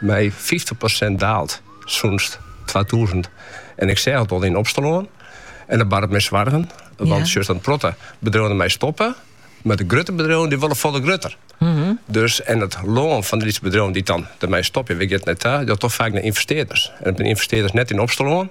mei fyftich persint daald sûnt twatûzen en ik seach it al yn Opsterlân en dat baart my soargen, want sjochst in protte bedriuwen der mei stoppe, mar de grutte bedriuwen dy wolle folle grutter. Dus en it lân fan de lytse bedriuwen dy't dan der mei stopje, wêr giet it nei ta? Ja, toch faak nei ynvestearders. En it binne ynvestearders net yn Opsterlân,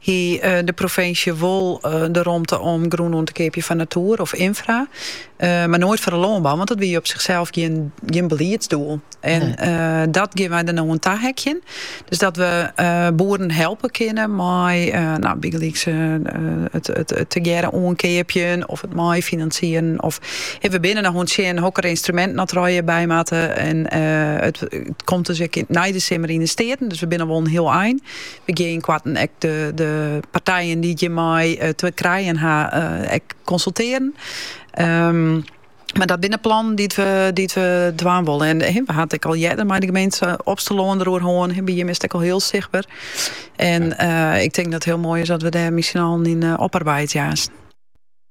hie de provinsje wol de romte om grûn oan te keapjen foar natoer of ynfra, mar noait foar de lânbou, want dat wie op sichsels gjin beliedsdoel. En dat geane wy der no oan taheakjen. Dus dat we boeren helpe kinne mei bygelyks it tegearre oankeapjen of it meifinansieren. Of we binne noch oan it sjen hokker ynstruminten oft derby moatte. En it komt dus ek nei de simmer yn de Steaten, dus we binne al wol in hiel ein. We gean ynkoarten ek de partijen dy't hjirmei te krijen ha ek konsultearjen. Mar dat binne plannen dy't we dwaan wolle. En we ha it ek al earder mei de gemeente Opsterlân der oer hân. By jim is it ek al hiel sichtber. En ik tink dat it hiel moai is as we dêr miskien allen yn oparbeidzje.